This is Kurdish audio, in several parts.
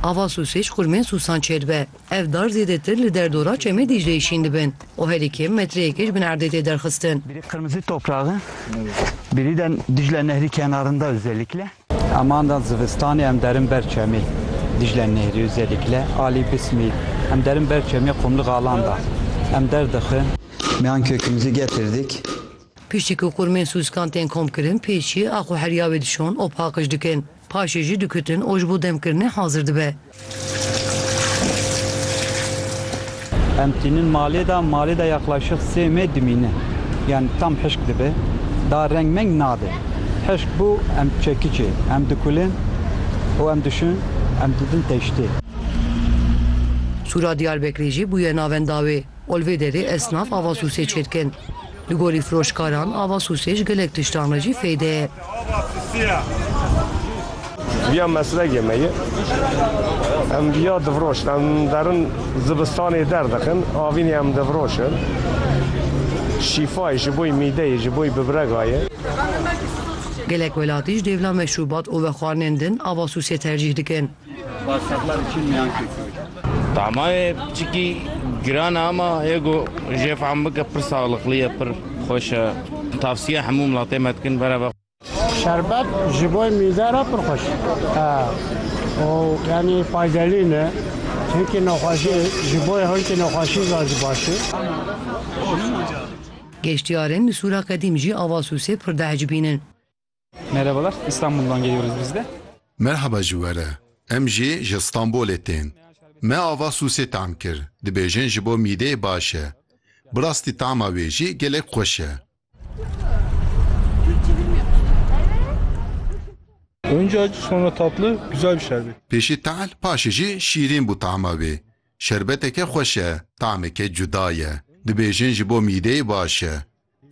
Ava sûsê ji xurmên sûsan çêdibe. Ev dar zêdetir li derdora Çemê Dîcleyê şîn dibin û herî kêm metreyekê ji bin erdê tê derxistin. Bîrî qirmizî topraq in. Bîrî de Dîcle Nehrî kenarinde ozêlikle. Emanda zivistanê em derin ber Çemê Dîcle Nehrî ozêlikle alî Bismî. Em derin ber Çemê Qumli Galan de em derdixin. Miyan Kökümüzü getirdik. Piştî ku qûrmên sûskan tên komkirin pêşî axo herîya wê dişon û paqij dikin. Paşê jî dikutin û ji bo demkirinê hazir dibe. Em tînin malê de, malê de yaqlaşîq sê mê dimîne. Yan tam hişk dibe. Daha reng meng nade. Hişk bû em çekiçê. Em dikulin û em dişin em didin teştê. Sûra Diyarbekirê jî bûye navenda wê. Ol vê derê esnaf ava sûsê çêdikin. Li gorî firoşkaran ava sûsê ji gelek tiştan re jî fêde ye. Viya meslekê me ye. Em viya difiroşin. Em derin zibistanê derdikin. Avînê em difiroşin. Şîfa ye ji bo mîdeyê, ji bo bibrega ye. Gelek welatî ji dêvla meşrûbat û vexwarinên din ava sûsê tercîh dikin. Tamayê piçikî giran e ama yê ku jê fehm bike pir saxliqlî ye, pir xweş e. Tavsiye hemû milatê me dikin vere ve. Şerbet ji bo mîde re pir xweş e û yanî faydelî ne. Hinkî nexweşî ji bo hinkî nexweşî zan jî baş e. Geştyarên li Sûra Qedîm jî ava sûsê pir diecibînin. Merhabalar, İstanbul'dan geliyoruz biz de. Merhaba ji we re. Em jî ji Stenbolê tên. Me ava sûsê tam kir. Dibêjin ji bo mîdeyê baş e. Bi rastî tama wê jî gelek xweş e. Önce acı sonra tatlı güzel bir şerbet. Pêşî tehl paşê jî şîrîn bû tama wê. Şerbeteke xweş e, tameke cuda ye. Dibêjin ji bo mîdeyê baş e.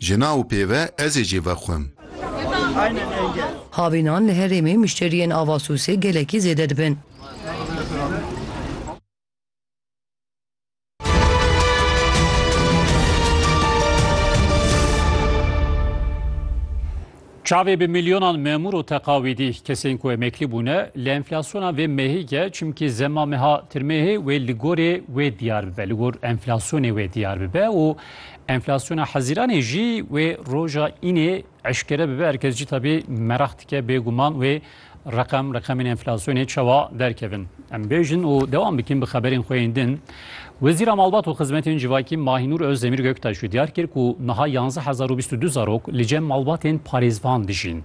Jina û pêve ez ê jê vexwim. Havînan li herêmê mişteriyên ava sûsê gelekî zêde dibin. Çavê bi milyonan memûr û teqawîdî kesên ku emeklî bûne li enflasyona vê mehî ke çimkî zema meha tirmehê wê li gorê wê diyar bibe, li gor enflasyonê wê diyar bibe û enflasyona hezîranê jî wê roja înê eşkere bibe. Her kes cî tabî meraq dike bêguman wê Reqem, reqemên enflasyonê çawa derkevin? Em bêjin û dewam bikin bi xeberên xwe yên din. Wezîra Malbat û Xizmetên Civakî Mahînûr Ozdemîr Göktaş jî diyar kir ku niha yanzdeh hezar û bîst û du zarok li cem malbatên parêzvan dijîn.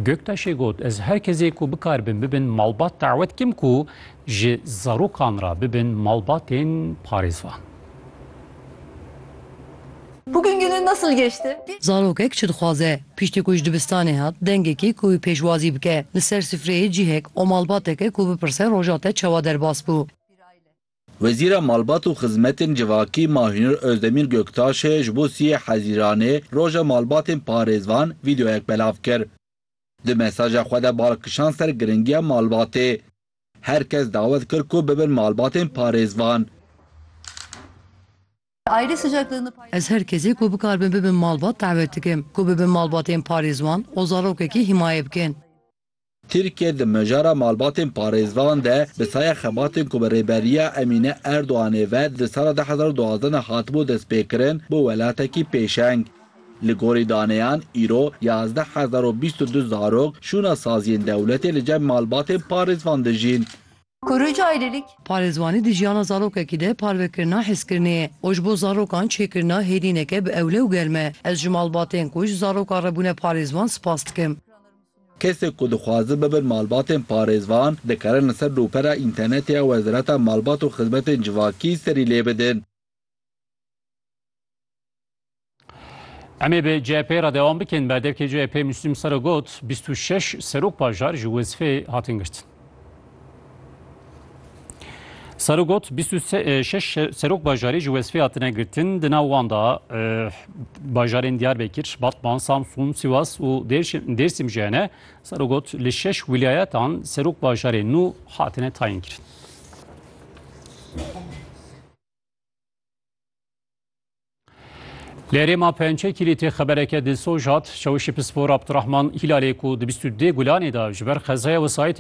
Göktaşê got, Ez her kesê ku bikaribin bibin malbat dawet dikim ku ji zarokan re bibin malbatên parêzvan. Bugün günün nasıl geçti? Zarokek çi dixwaze? Piştî ku ji dibistanê hat, dengekî ku wî pêşwazî bike, li ser sifreyê cihek û malbateke ku bipirse roja te çawa derbas bû. Wezîra Malbat û Xizmetên Civakî Mahûnur Ozdemîr Göktaşê ji bo Sûyê Hezîranê Roja Malbatên Parêzvan vîdeoyek belav kir. Di mesaja xwe de bal kişand ser girîngiya malbatê. Her kes dawet kir ku bibin malbatên parêzvan. Ez her kesê ku bikaribin bibin malbat dawet dikim ku bibin malbatên parêzvan û zarokekî himaye bikin. Tirkiye di mijara malbatên parêzvan de bi saya xebatên ku bi Rêberiya Emîne Erdoganê ve di sala du hezar û duwazdeh de hatibû destpêkirin, bû welatekî pêşeng. Li gorî daneyan îro yazdeh hezar û bîst û du zarok şûna saziyên dewletê li cem malbatên parêzvan dijîn. Kuruc Ayrılık. Parêzvanî di jiyana zarokekî de parvekirina hezkirinê ye û ji bo zarokan çêkirina hêdîneke bi ewle û germ e. Ez ji malbatên ku ji zarokan re bûne parêzvan spas dikim. Kesên ku dixwazin bibin malbatên parêzvan, dikarin li ser nûpera înternetê ya Wezareta Malbat û Xizmetên Civakî serî lê bidin. Em ê bi CHP'ê re dewam bikin. Berdevkê CHP'ê Müslüm Sara got, bîst û şeş serok bajar ji wezîfeyê hatin girtin. Sara got, bîst û şeş serok bajarê ji wezîfeyê hatine girtin. Di nav wan de bajarên Diyarbekir, Batman, Samsun, Sivas û Dêrsim jî hene. Sara got, li şeş wîlayetan serok bajarê nû hatine tayînkirin. Lêrê ma pençe kîlîtê xebereke dilsoz hat, Şewişî Pispor Abdurahman Hîlalê ku di bîst û dê gulanê de ji ber xezaya wesayîtê